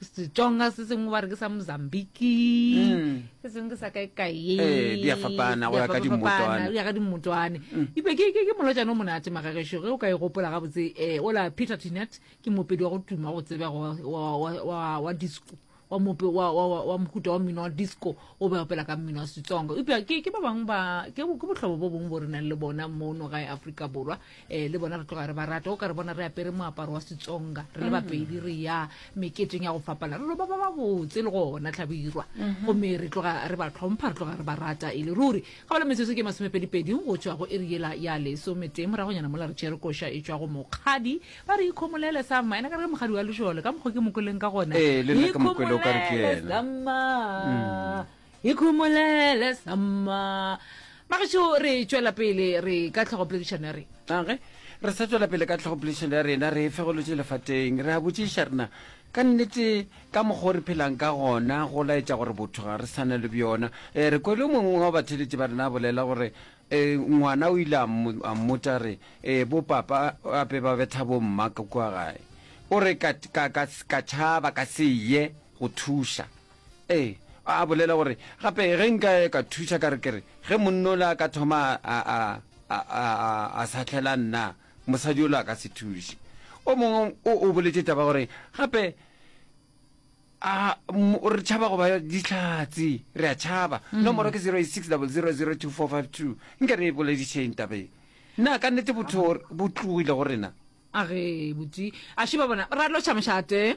setsonga se sengwe ba re ke sa mozambiki se sengwe ke sa kae kae Eh, di a fapana go ya ka dimmotwana. go ya ka dimmotwane ipe ke ke- ke molotšane o monate magagešo ge o ka e gopola gabotse um ola peter tinet ke mopedi wa go tuma go tsebega wa- wa- wa- wa- wa disco wa mope wa wa- wa- wa mohuta wa mmino wa disco o be opela ka mmino wa setsonga eupša ke ke ba bangwe ba ke bo- ke bohlobo bo bongwe bo re nang le bona mono gae aforika borwa um le bona re tloga re ba rata o ka re bona re apere moaparo wa setsonga re le bapedi re ya meketeng ya go fapana re lo ba ba ba botse le gona tlhabirwa gomme re tloga re ba tlhompha re tloga re ba rata e le ruri ga bala metsotso ke masomepedipedi go tswa go eri yela ya lesometee moragonyana mola re tšere koša e tswa go mokgadi ba re ikhomolele sama ena ka re ke mokgadi wa lešole ka mokgwa ke mokoleng ka gona Ee, le nna ke Mokwele, o ka re ke ikhomolele yena. sama ikhumolele samma magašo re tšwela pele re ka tlhogo poledišano ya rena age re sa tšwela pele ka tlhogo poledišano ya rena re fegolotše lefateng re a botšiša rena ka nnete ka mokgwa o re phelang ka gona go laetša gore botho ga re sana le bjona um re kwele mongwe wa batheletši ba rena a bolela gore um ngwana o ile a mmotša re um bopapa ape ba betha bomma ka kua gae o re ka tšhaba ka se ye go thuša Ee, a bolela gore, Gape ge nka ka thuša ka re ke re, ge monna o le a ka thoma a, a, a, a, a, a sahlela nna, mosadi o le a ka se thuše. O mongwe o, o boletše taba gore, Gape a, m, re tšhaba go ba dihlatse, re a tšhaba. Nomoro ke 0860002452. Nke re e boledišeng taba ye. Na ka nnete botho bo tlogile go rena? A ge botse a šiba bona, ra lotšha mošate.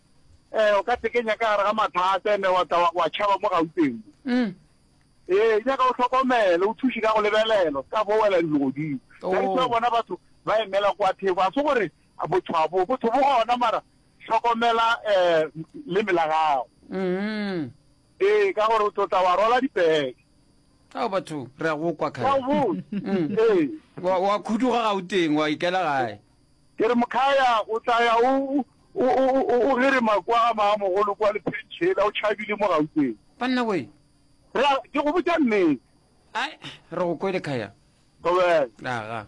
Ee, o ka tekenya ka gare ga mathata ene wa tla wa tšhaba mo gauteng mo. Mm. Ee, e nyaka o hlokomele, o thuše ka go lebelelo, ka bo wela dilo godimo. Oh. Ka ditse bona batho ba emela kwa theko, a se gore botho bo botho bo gona mara hlokomela eh le mela gago. Mm. Ee, ka gore o tlotla wa rola dipeke. Ao batho re a go kwa Ka kgale. bo. Mm. Ee. Wa wa khuduga gauteng wa ikela gae. Ke re Mkhaya o tla ya o, o, o, o, o, o gerima kwa ga maamogolo kwa lepheeng tšhela, o tšhabile mo Gauteng. Banna we! Re a, ke go botša nnete. Ai, re go kwele, Khaya. Gobane. Aga.